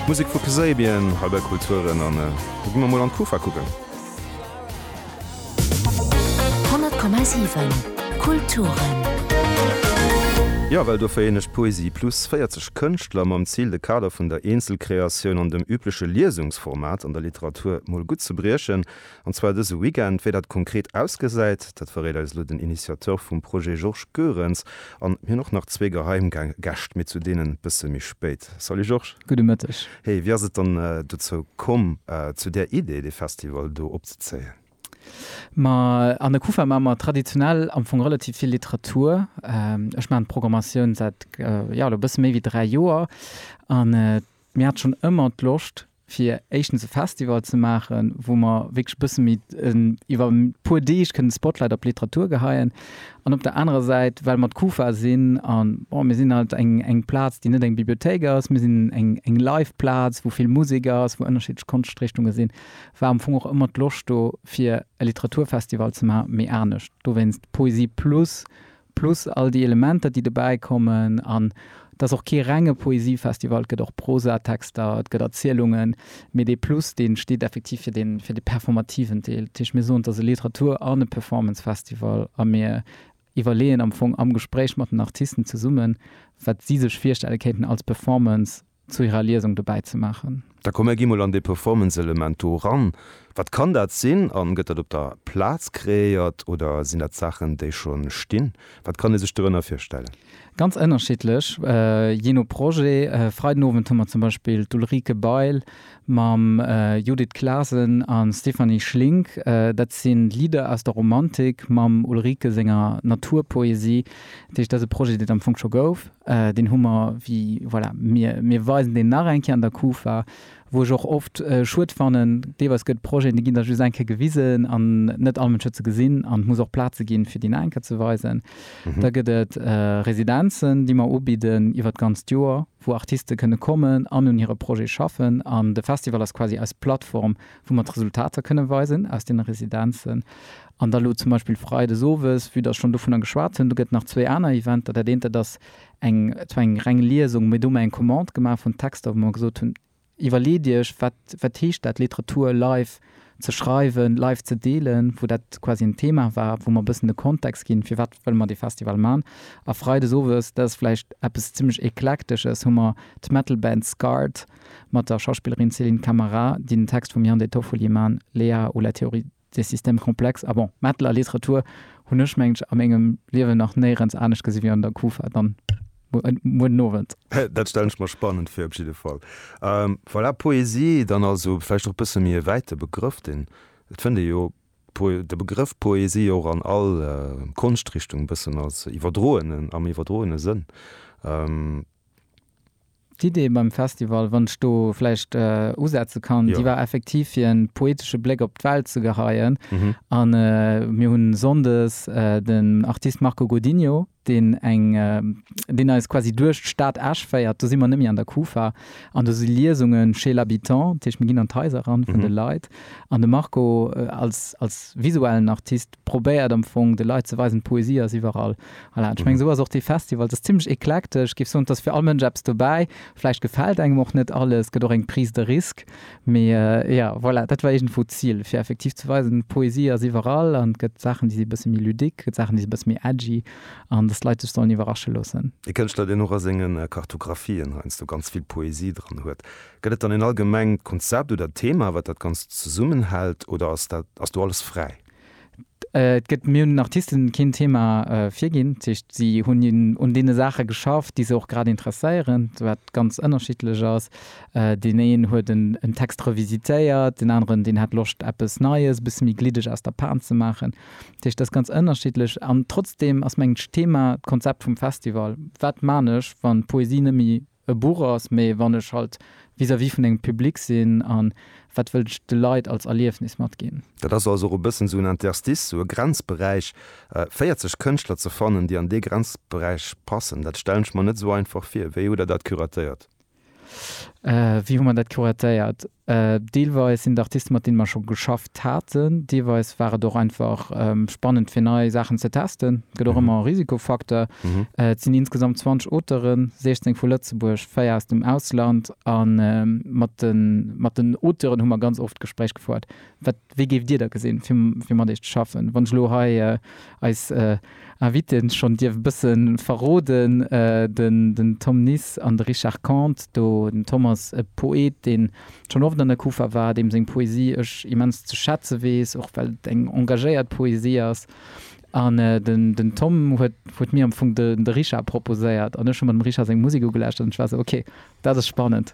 Musek vu Kasabian hei bei Kulturen an da gi mer mol an d'Kufa kucken. 100,7 Kulturen. Jo, well dofir hun ech Poesie plus 40 Kënschtler mam Zil de Kader vun der Eenzelkreatioun an dem übleche Liesungsformat an der Literatur mol gutt ze briechen. An zwar dëse Weekend. Wéi dat konkret ausgesäit, dat verréit eis elo den Initiateur vum Projet Georges Goerens. An mir hunn och nach zwee geheim Gäscht, mee zu deenen e bësse méi spéit. Salut Georges. Gudde Mëtteg. Hey, wéi ass et dann dozou komm, zu där Idee, dee Festival do opzezéien? Ma an der Kufa maache mer traditionell am Fong relativ vill Literatur. Ech maachen d'Programmatioun säit, jo, elo e bësse méi wéi dräi Joer. An mir hat schonn ëmmer d'Loscht, fir éischtens e Festival ze maachen, wou mer wierklech e bësse méi iwwer e puer Deeg kënnen de Spotlight op d'Literatur geheien an op der anerer Säit, well mer d'Kufa sinn a bon, mir sinn halt eng eng Plaz, déi net eng Bibliothéik ass, mir sinn eng eng Live-Plaz, wou vill Musek ass, wou ënnerschiddlech Konschtrichtunge sinn, war am Fong och ëmmer d'Loscht do, fir e Literaturfestival ze maachen, mee anescht. Dowéinst Poesie Plus, Plus all déi Elementer, déi dobäi kommen. An et ass och kee renge Poesiefestival, et gëtt och Prosatexter, et gëtt Erzielungen, mee dee Plus, dee steet effektiv fir dee, fir dee performativen Deel. Dat heescht, mir soen, et ass e Literatur an e Performance-Festival a mir iwwerleeën am Fong am Gespréich mat den Artisten zesummen, wat si sech virstelle kéinten als Performance zu hirer Liesung dobäi ze maachen. Da komm mer gi mol an dee Performance-Element do eran. Wat kann dat sinn an gëtt dat op der Plaz kreéiert oder sinn dat Saachen, déi scho stinn? Wat kann ee sech dorënner virstellen? Ganz ënnerschiddlech, jee no Projet. Freiden Owend hu mer zum Beispill d'Ulrike Bail mam Judith Clasen a Stéphanie Schlink, dat si Lidder aus der Romantik mam Ulrike senger Naturpoesie, dat heescht dat ass e Projet deen am Fong scho gouf, deen hu mer wéi, voilà, mir mir weisen deen nach eng Kéier an der Kufa, wou ech och oft schued fannen, deelweis gëtt Projeten, déi ginn da just eng Kéier gewisen an net all Mënsch huet se gesinn an et muss och Plaze ginn fir déi nach eng Kéier ze weisen. Da gëtt et Residenzen, déi mer ubidden iwwert d'ganzt Joer. wou Artiste kënne kommen an un hire Projete schaffen an de Festival ass quasi eis Plattform, wou mer d'Resultater kënne weisen aus deene Residenzen. An da lo zum Beispill freides owes, vue dass ech schonn dovunner geschwat hunn, do gëtt nach zwee aner Eventer. Dat eent, dat ass eng, zwar eng reng Liesung, mee do hu mer eng Commande gemaach vun Texter, wou mer gesot hunn, Iwwerleet Iech, wat, wat heescht dat, Literatur live ze schreiwen, live ze deelen, wou dat quasi en Thema war, wou mer e bëssen de Kontext ginn, firwat wëlle mer dee Festival man. A Freides owes, dat ass vläicht eppes zimlech Eklektesches, hu mer d'Metal Band Scarred mat der Schauspillerin Céline Camara, déi den Text vum Yann De Toffoli man, Léa ou la théorie Dee System komplex a bon. Metal a Literatur hunn ech mengen ech a mengem Liewen nach néierens anescht gesi wéi an der Kufa dann muer den Owend. Dat stellen ech mer spannend vir op jidde Fall. Voilà, Poesie dann also vläicht och bësse méi e wäite Begrëff, deen, et fënnt ee jo de Begrëff Poesie jo och an all Konschtrichtung bëssen als iwwerdroenen, am iwwerdroene Sënn. D'Idee beim Festival, wann ech do vläicht usetze kann, déi war effektiv fir e poetesche Bléck op d'Welt ze geheien. A mir hunn Sonndes den Artist Marco Godinho, deen eng, deen eis quasi duerch d'Stad Esch féiert, do si mer net méi an der Kufa, an do si Liesunge chez l'habitant, dat heescht mir ginn an d'Haiser eran vun de Leit an de Marco als, als visuellen Artist, probéiert am Fong de Leit ze weisen, d'Poesie ass iwwerall. Voilà, ech mengen, esou ass och dee Festival, et ass zimlech eklektesch. Géif soen, et ass fir all Mënsch eppes dobäi. Vläicht gefält engem och net alles, gëtt och eng Prise de risque. Mee jo, voilà, dat war iergendwou d'Zil, fir effektiv ze weisen, d'Poesie ass iwwerall an et gëtt Saachen, déi si e bësse méi ludique, gëtt Saachen, déi si e bësse méi edgy an dass d'Leit sech sollen iwwerrasche loossen. E Kënschtler, deen och a senge Kartographien heiansdo ganz vill Poesie dran huet. Gëtt et dann en allgemengt Konzept oder Thema, wat dat Ganzt zesummenhält oder ass dat, ass do alles fräi? Et gëtt, mir hunn den Artisten keen Thema virginn, dat heescht si hunn un deene Saache geschafft, déi se och grad interesséieren, wat ganz ënnerschiddlech ass. Deen een huet en Text revisitéiert, deen aneren, deen hat Loscht eppes Neies, e bësse méi gliddeg aus der Pan ze maachen. Dat heescht, dat ass ganz ënnerschiddlech an trotzdeem ass mengen ech d'Thema d'Konzept vum Festival, wat man ech wann d'Poesie net méi e Buch ass, mee wann ech halt vis-à-vis vun engem Public sinn a wat wëll ech de Leit als Erliefnis matginn. Dat ass also och e bëssen esou en Interstice, esou e Grenzberäich, 40 Kënschtler ze fannen, déi an dee Grenzberäich passen, dat stellen ech mer net esou einfach vir. Wéi hutt Der dat curatéiert? Wéi hu mer dat curatéiert? Deelweis sinn et Artisten, mat deene mer scho geschafft haten, deelweis war et och einfach spannend, fir nei Saachen ze testen. Et gëtt och ëmmer e Risikofacteur. Et sinn insgesamt 20 Auteuren, 16 vu Lëtzebuerg, véier aus dem Ausland. A mat den Auteuren hu mer ganz oft d'Gespréich gefouert, Wat, wéi géift Dir da gesinn, fir mat iech ze schaffen, wann ech elo hei eis Invitée schonn dierf bësse verroden, den Tom Nis an de Richard Kondt. Do den Tom ass e Poet, dee schonn oft an der Kufa war, deem seng Poesie ech immens ze schätze weess, och well et eng engagéiert Poesie ass. An den Tom huet mir am Fong de Richard proposéiert an ech hu mer dem Richard seng Musek ugelauschtert an ech war esou, ok, dat ass spannend.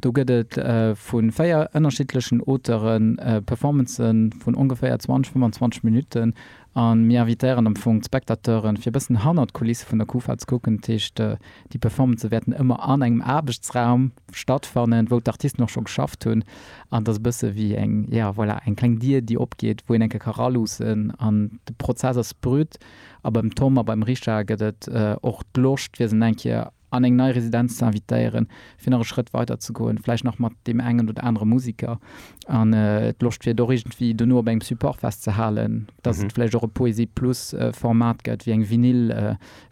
Do gëtt et vu véier ënnerschiddlechen Auteure Performancë vun ongeféier 20, 25 Minutten a mir invitéieren am Fong d'Spectateuren, fir e bëssen hannert d'Kulisse vun der Kufa ze kucken. Dat heescht, déi Performancë wäerten ëmmer an engem Aarbechtsraum stattfannen, wou d'Artisten och scho geschafft hunn. An et ass e bësse wéi eng, ja voilà, eng kleng Dier, déi opgeet, wou een eng Kéier ka raluussen. An de Prozess ass brut a beim Tom a beim Richard gëtt et och d'Loscht, fir se nach eng Kéier an eng nei Residenz ze invitéieren, fir nach e Schrëtt weider ze goen, vläicht nach mat deem engen oder anere Museker an d'Loscht fir et och iergendwéi dono op engem Support festzehalen, dass et vläicht och e Poésie Plus Format gëtt, wéi eng Vinyl,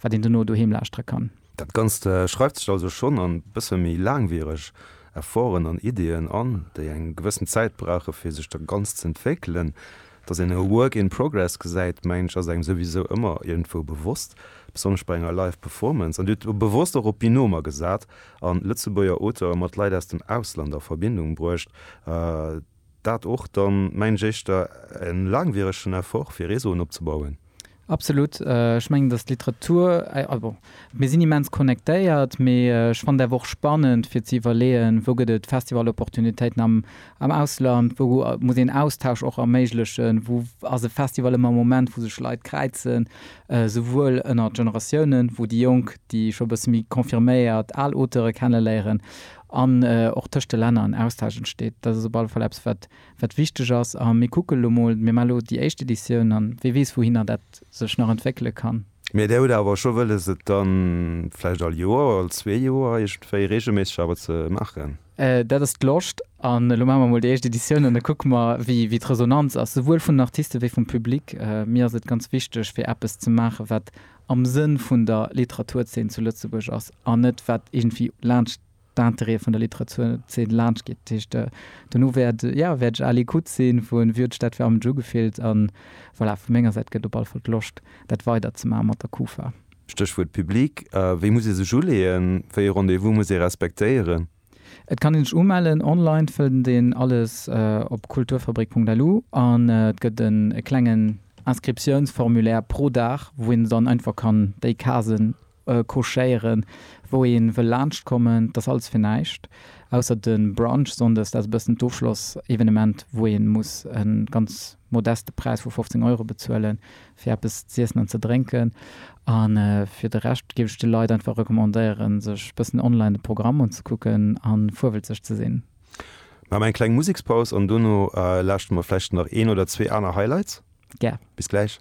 wat een dono doheem lauschtere kann. Dat Ganzt schreift sech also schonn an bësse méi laangwiereg Efforten an Ideeën an, déi eng gewëssen Zäit brauche fir sech da ganz z'entwéckelen. Dass een e Work in Progress gesäit, mengen ech, ass engem souwisou ëmmer iergendwou bewosst, besonnesch bei enger Live Performance. An Dir hutt bewosst och op Binomer gesat a Lëtzebuerger Auteure mat Leit aus dem Ausland a Verbindung bruecht. Dat och dann, mengen ech, éischter e laangwieregen Effort, fir Réseauen opzebauen. Absolut. Ech mengen, dass d'Literatur, bon, mir sinn immens connectéiert, mee ech fannen et awer och spannend, fir ze iwwerleeën, wou gëtt et Festival-Opportunitéiten am Ausland, wou muss een Austausch och erméiglechen, wou ass e Festival ëmmer e Moment, wou sech Leit kräizen, souwuel ënnert Generatiounen, wou déi Jonk déi scho e bësse méi confirméiert al Auteure kenneléieren an och tëscht de Länner en Austausch entsteet. Dat ass op alle Fall eppes, wat wat wichteg ass. A mir kucke lo mol, mir man lo déi éischt Editioun an wee weess wouhinner dat sech nach entwéckele kann. Mee der huet awer scho wëlles et dann vläicht all Joer, all zwee Joer iergendwéi reegelméisseg awer ze maachen. Dat ass d'Loscht an elo maache mer mol déi éischt Editioun an da kucke mer wéi d'Resonanz ass, souwuel vun den Artiste wéi vum Public. Mir ass et ganz wichteg fir eppes ze maache wat am Sënn vun der Literaturzeen zu Lëtzebuerg ass an net wat iergendwéi laanscht d'Intérêt vun der Literaturzeen laanscht geet. Dat heescht, dono wäert, jo, wäert ech à l'écoute sinn vu Wie huet d'Stad fir arm Jew gefillt? an voilà, vu menger Säit gëtt op alle Fall d'Loscht, dat weider ze maachen mat der Kufa. Stéchwuert Public, Wéi muss ee sech uleeën? Wéi ee Rendez-vous muss ee respektéieren? Et kann ee sech umellen, online fënnt een alles op kulturfabrik.lu an et gëtt e klengen Inscriptiounsformulaire pro Dag, wou een dann einfach kann déi Casen Couchéieren, wou een wëll laanscht kommen, dass alles fir näischt, ausser den Brunch Sonndes, dat ass e bëssen d'Ofschloss Evenement, wou een muss en ganz modeste Präis vu 15 Euro bezuelen fir eppes z'iessen an ze drénken. An fir de Rescht géif ech de Leit einfach recommandéieren sech bëssen online de Programm un ze kucken an fuerwelzeg ze sinn. Mir man eng kleng Musekspaus an dono lauschteren mer vläicht nach een oder zwee aner Highlights. Gär. Bis gläich.